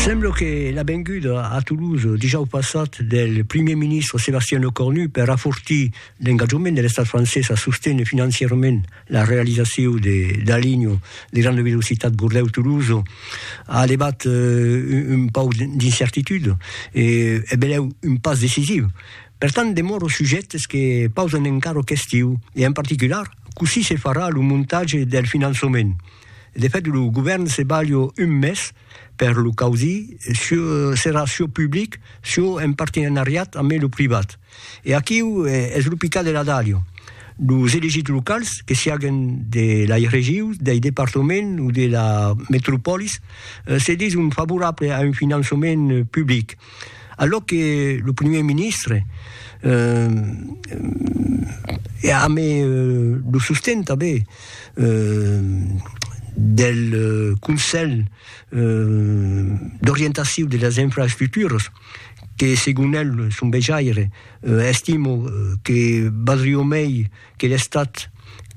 Sembla que la venguda a Toulouse dijòu passat del primièr ministre Sébastien Lecornu per afortir l'engatjament de l'estat francés a sostener financièrament la realizacion de la linha de granda velocitat Bordèu-Toulouse a levat un pauc d'incertitude e benlèu un pas decisiu. Per tant, demòra o sujèctes que pausan encara questiu e en particular cossí se farà lo montatge del finançament. De fait, lo govèrn se balha un mes per lo causir, serà çò public, çò en partenariat amé lo privat. E aquiu es lo picat de la dalha. Los elegits locals, que siaguen de lai regius, dei departaments o de la metropòlis, se dison favorables a un finançament public. A lo que lo primièr ministre eh, a amé lo sosten tanben del Conselh d'orientaciu de las infraestructuras, que segon el, son vejaire, estimo que valdrió mei que l'Estat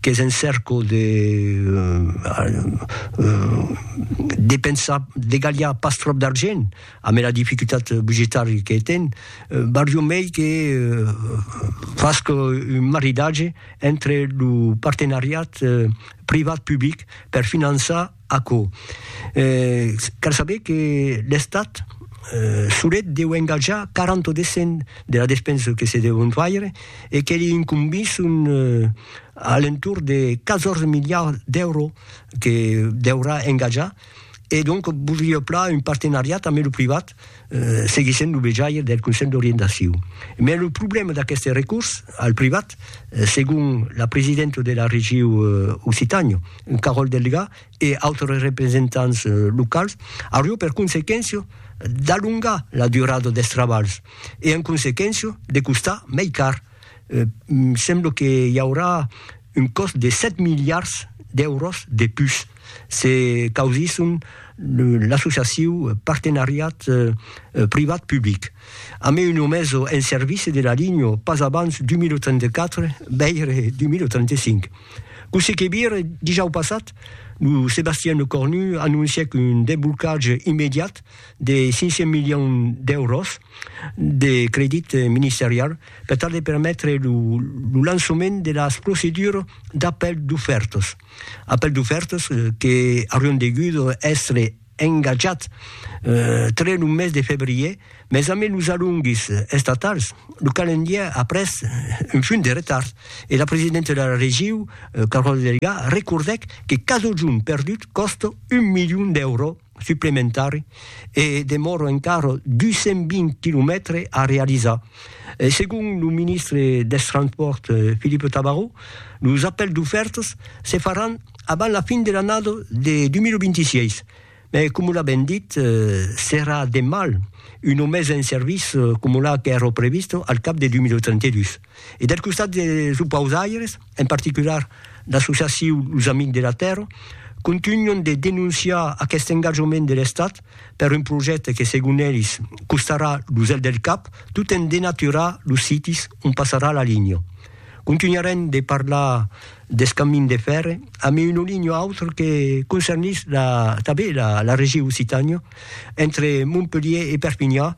qu'es en cèrco de de pensar de galhar pas tròp d'argent amé la dificultat budgetari que ten, barriu mei que fasque un maridatge entre lo partenariat privat-public per finançar Aquò, cal saber que l'Estat solet deu engatjar 40 o descent de la despensa que se deu faire e que li incombís un alentorn de 14 miliards d'èuros que deurà engatjar e donc vos li hèu plan un partenariat amé lo privat seguir sent lo vejaire del Conselh d'Orientacion. Mai lo problèma d'aqueste recurs al privat, segon la presidenta de la regiu Occitània, Carole Delga, e autres representants locals, aurió per consequéncia d'alongar la durada dels trabalhs e, en consequéncia, de costar mai car. sembla que i aurà un còst de 7 miliards d'èuros de pus, se causisson l'associaciu Partenariat privat-public. A mai una meso en servici de la linha pas abans 2034, veire 2035. Cossí que vire, dijau passat, lo Sébastien Lecornu anoncièc un desblocatge immediat de 500 milions d'èuros, de credit ministerial per tal de permetre lo lançament de las procedures d'apèl d'ofèrtas. Apèl d'ofèrtas que aurián degut èstre engatjats tre lo mes de febrièr, mas amé los alonguis estatals, lo calendièr a pres un funt de retard e la presidenta de la Regiu, Carol Delga, recordèc que cada jorn perdut còsta un milion d'èuros. suplementari e demòra encara 220 quilomètres a realizar. Segon lo ministre dels Transpòrts Philippe Tabarot, los apèls d'ofèrtas se faràn abans la fin de l'annada de 2026, mas coma l'a ben dit, serà de mal una mesa en servici coma la qu'èra prevista al cap de 2032. E del costat dels opausaires, en particular l'associaciu Los Amics de la Tèrra, contunhon de denonciar aqueste engatjament de l'Estat per un projècte que, segon elis, costarà lo zel del cap tot en denaturar los sites ont passarà la linha. Contunharem de parlar deth camin de fèrre amé un olinho autre que concernís tanben la Regiu Occitània, entre Montpelhier e Perpinhan,